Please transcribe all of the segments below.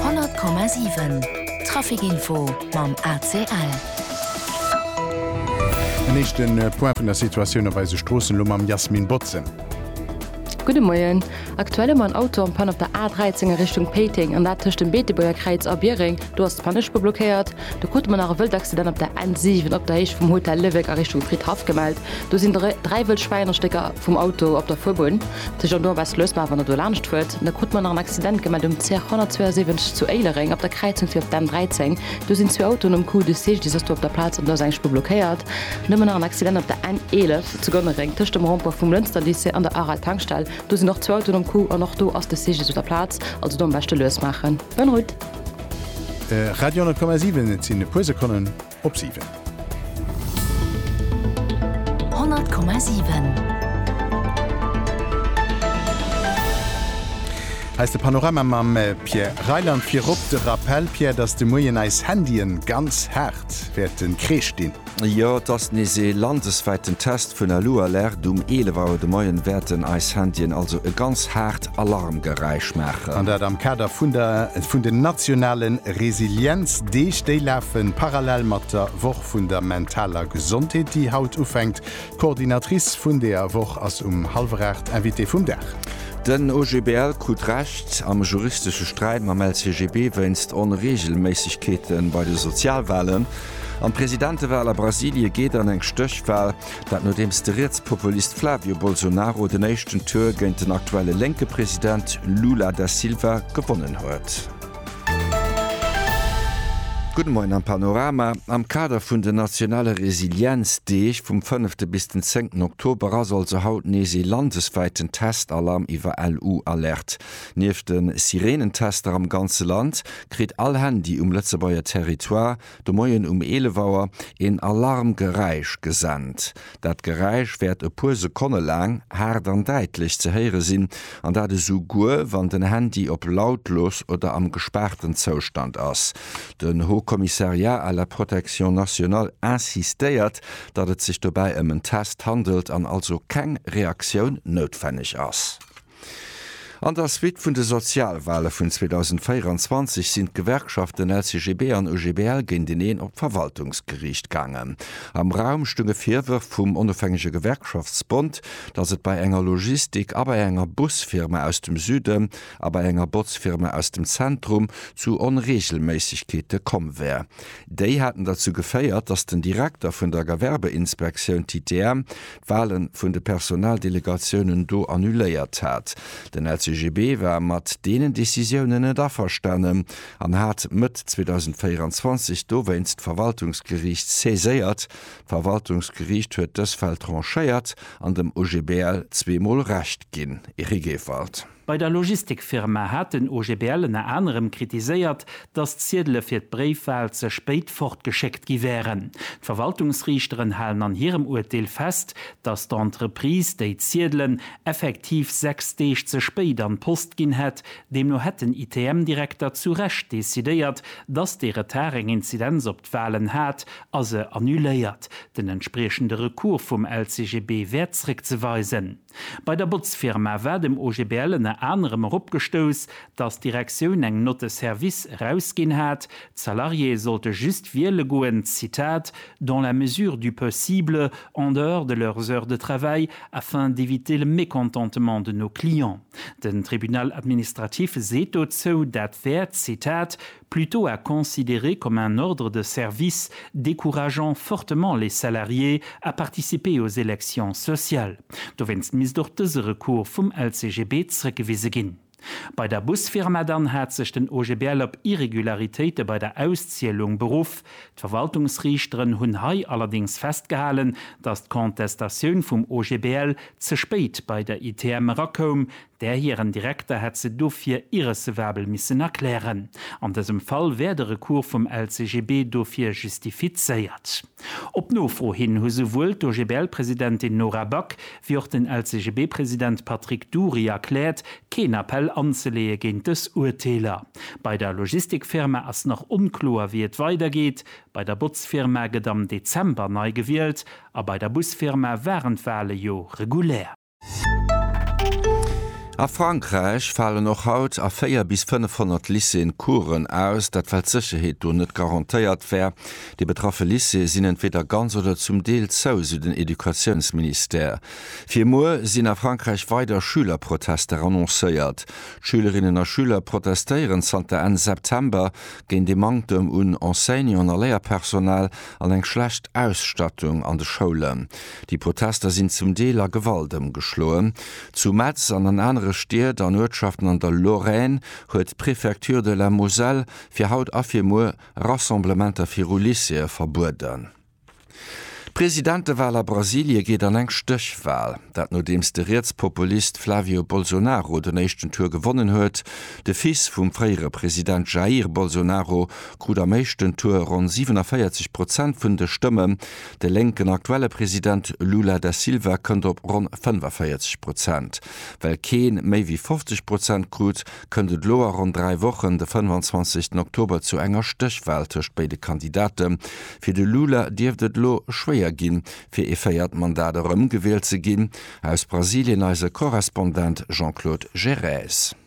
100,7 Traficinfo mam ACL. En éischte Point vun der Situatioun op eise Stroossen, elo mam Jasmin Botzen. Gudde Moien. Aktuell hu mer en Auto am Panne op der A13 a Richtung Péiteng, an dat tëscht dem Beetebuerger Kräiz a Biereng. Do ass d'Panneschpur blockéiert. Da krute mer nach e wëllt Accident op der N7 op der Héicht vum Hotel Léwek a Richtung Fridhaff gemellt. Do sinn dräi wëll Schwäinerstécker vum Auto op der Fuerbunn. De Jean Dorbes loosst mer awer net do laanscht d'Wuert. Da krute mer nach en Accident gemellt um CR 172 zu Éilereng op der Kräizung fir op d'N 13. Do sinn zwee Autoen um Coup, de CGDIS ass do op der Plaz an do ass eng Spuer blockéiert. Nëmmen nach en Accident op der N 11 zu Gonnereng tëscht dem Rond-point vum Lënster Lycée an der Aral Tankstell. Do sinn och zwou Autoen um Coup an och do ass de CGDIS op der Plaz. Also do am beschte lues maachen. Bonne route! Radio 10,7 Et sinn e puer Sekonnen. op 7. 100,7. Hei ass de Panorama mam Pierre Reyland. Virop de Rappell, Pierre, datt de Moien eis Handyen ganz haart wäerte kreescht dinn. Jo, et ass nees ee landeswäiten Test vun Alu Alert. Um 11 Auer de Moien wäerten eis Handyen also e ganz haart Alarmgeräisch maachen. An dat am Kader vun der vun den nationale Resilienzdeeg. Déi lafe parallel mat der Woch vun der mentaler Gesondheet, déi haut ufänkt. D'Coordinatrice vun deeër Woch ass um hallwer 8 Invitée vum Dag. Den OGBL krut Recht am juristesche Sträit mam LCGB wéinst Onreegelméissegkeete bei de Sozialwalen. An d'Presidentewal a Brasilie geet an eng Stéchwal. Dat nodeems de Rietspopulist Flavio Bolsonaro den éischten Tour géint den aktuelle lénke President Lula da Silva gewonnen huet. Gudde Moien am Panorama. Am Kader vun den nationale Resilienzdeeg vum fënnefte bis den zéngten Oktober ass also haut nees ee landeswäiten Testalarm iwwer LU-Alerte. Nieft de Sireenentester am ganze Land kritt all Handy um Lëtzebuerger Territoire de Moien um 11 Auer een Alarmgeräisch gesent. Dat Geräisch wäert e puer Sekonne laang haart an däitlech ze héiere sinn, an dat esou guer wann den Handy op lautlos oder am gespaarten Zoustand ass. Den Haut Commissariat à la Protection Nationale insistéiert, datt et sech dobäi ëm en Test handelt an also keng Reaktioun noutwenneg ass. An der Suite vun de Sozialwale vun 2024 sinn d'Gewerkschaften LCGB an OGBL géinteneen op d'Verwaltungsgeriicht gaangen. Am Raum stounge Virwërf vum Onofhängege Gewerkschaftsbond, datt et bei enger Logistik a bei enger Busfirma aus dem Süden a bei enger Botzfirma aus dem Zentrum zu Onreegelméissegkeete komm wär. Déi hätten derzou geféiert, datt den Direkter vun der Gewerbeinspektioun TTM d'Wahle vun de Personaldelegatiounen do annuléiert hat. Den LCGB war mat deenen Decisiounen net averstanen an hat Mëtt 2024 dowéinst d'Verwaltungsgeriicht saiséiert. D'Verwaltungsgeriicht huet dës Fäll tranchéiert an dem OGBL zweemol Recht ginn. Eric Ewald. Bei der Logistikfirma hat den OGBL ënner anerem kritiséiert, datt d'Ziedele fir d'Bréifwal ze spéit fortgeschéckt gi wären. D'Verwaltungsriichteren halen an hirem Urteel fest, datt d'Entreprise déi Ziedelen effektiv sechs Deeg ze spéit an d'Post ginn hätt. Deemno hätt den ITM-Direkter zu Recht decidéiert, datt dee Retard eng Inzidenz op d'Walen hat a se annuléiert. Den entspriechende Recours vum LCGB wär zréckzeweisen. Bei der Botzfirma war dem OGBL ënner anerem erop gestouss, datt d'Direktioun eng Note de service erausginn hat, d'Salariéë sollte just wiele goen, Zitat, dans la mesure du possible, en dehors de leurs heures de travail, afin d'éviter le mécontentement de nos clients. Den Tribunal administratif seet dozou, dat wär, Zitat, plutôt à considérer comme un ordre de service décourageant fortement les salariés à participer aux élections sociales. Dowéinst misst och dëse Recours vum LCGB zrëckgewise ginn. Bei der Busfirma dann hat sech den OGBL op Irregularitéite bei der Auszielung beruff. D'Verwaltungsriichteren hunn hei allerdéngs festgehalen, dass d'Contestatioun vum OGBL ze spéit bei der ITM erakoum, Där hiren Direkter hätt se dofir irrecevabel missen erklären. An dësem Fall wär de Recours vum LCGB dofir justifizéiert. Op Nofro hin hu souwuel d'OGBL-Presidentin Nora Back wéi och den LCGB-President Patrick Dury erkläert, keen Appell anzeleeë géint dës Urteeler. Bei der Logistikfirma ass nach onkloer, wéi et weidergeet. Bei der Botzfirma gëtt am Dezember nei gewielt a bei der Busfirma waren d'Wale jo regulär. A Frankräich falen och haut a 4 bis 500 Lycéeën Coursen aus, dat well d'Sécherheet do net garantéiert wär. Déi betraffe Lycéeë sinn entweeder ganz oder zum Deel zou, sou den Educatiounsministère. Fir muer sinn a Frankräich weider Schülerprotester annoncéiert. D'Schülerinnen a Schüler protestéieren zanter Enn September géint ee Manktem un Enseignanten a Léierpersonal an eng schlecht Ausstattung an de Schoulen. Déi Protester sinn zum Deel a Gewalt ëmgeschloen. Zu Metz an an anere Stied an Uertschaften an der Lorraine huet d'Préfecture de la Moselle fir haut a fir muer Rassemblementer viru Lycéeë verbueden. D'Presidentewal a Brasilie geet an eng Stéchwal. Dat nodeems de Rietspopulist Flavio Bolsonaro den éischten Tour gewonnen huet. De Fils vum fréiere President Jair Bolsonaro krut am éischten Tour ronn 47 Prozent vun de Stëmmen. De lénken aktuelle President Lula da Silva kënnt op ronn 45 Prozent. Well kee méi wéi 50 Prozent krut, kënnt et elo a ronn dräi Wochen, de 25 Oktober, zu enger Stéchwal tëscht béide Kandidate. Fir de Lula dierft et elo schwéier ginn, fir ee véiert Mandat erëm gewielt ze ginn. Aus Brasilien eise Korrespondent Jean-Claude Gérèse.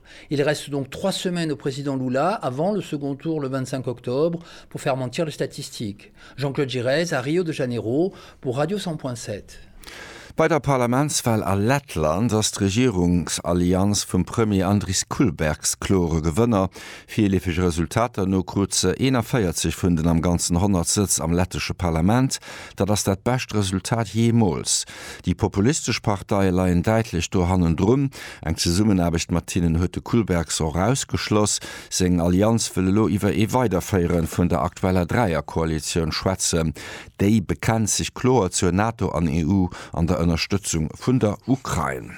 Il reste donc trois semaines au président Lula avant le second tour le 25 octobre pour faire mentir les statistiques. Jean-Claude Giresse a Rio de Janeiro pour Radio 100.7. Bei der Parlamentswal a Lettland ass d'Regierungsallianz vum Premier Andris Kulbergs klore Gewënner. Virleefege Resultater no krut se 41 vun den am Ganzen 100 Sëtz am lettesche Parlament. Dat ass dat bescht Resultat jeemools. Déi populistesch Parteie leien däitlech do hannendrun. Eng Zesummenaarbecht mat hinnen huet de Kullbergs och ausgeschloss. Seng Allianz wëll elo iwwer ee Weiderféiere vun der aktueller Dräierkoalitioun schwätzen. Déi bekennt sech kloer zur NATO an EU an der Ënnerstëtzung vun der Ukrain.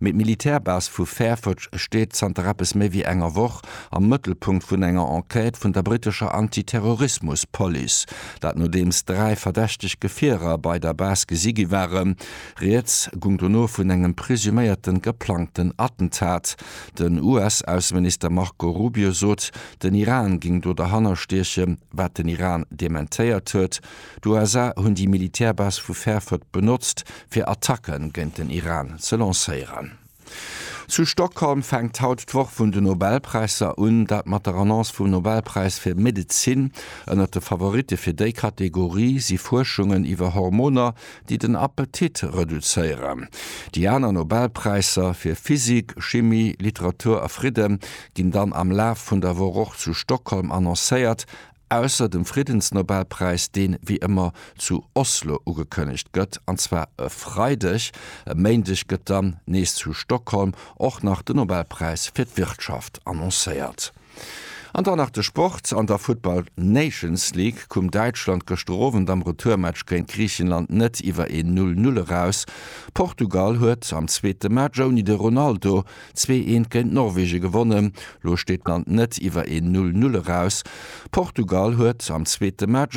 Mee d'Militärbase vu Fairford steet zanter eppes méi wéi enger Woch am Mëttelpunkt vun enger Enquête vun der brittescher Anti-Terrorismus-Police. Dat nodeems dräi verdächteg Gefierer bei der Base gesi gi waren. Rieds gung dono vun engem presuméierten geplangten Attentat. Den US-Ausseminister Marco Rubio sot, den Iran géing do derhanner stiechen, wat den Iran dementéiert huet. D'USA hunn déi Militärbase vu Fairford benotzt, fir Attacke géint den Iran ze lancéieren. Zu Stockholm fänkt haut d'Woch vun de Nobelpräisser un, dat mat der Annonce vum Nobelpräis fir Medezin. Ënnert de Favoritte fir déi Kategorie si Fuerschungen iwwer Hormoner, déi den Appetit reduzéieren. Déi aner Nobelpräisser, fir Physik, Chimie, Literatur a Fridde, ginn dann am Laf vun der Woch och zu Stockholm annoncéiert. Ausser dem Friddensnobelpräis, deen, wéi ëmmer, zu Oslo ugekënnegt gëtt, an zwar e Freideg, e Méindeg gëtt dann nees zu Stockholm och nach den Nobelpräis fir d'Wirtschaft annoncéiert. An dann nach de Sport, An der Futtball Nations League koum Däitschland gëschter Owend am Retourmatch géint Griichenland net iwwer een Null-Null eraus. Portugal huet am zweete Match ouni de Ronaldo Zwee eent géint Norwegen gewonnen. Lo steet d'Land net iwwer een Null-Null eraus. Portugal huet am zweete Match.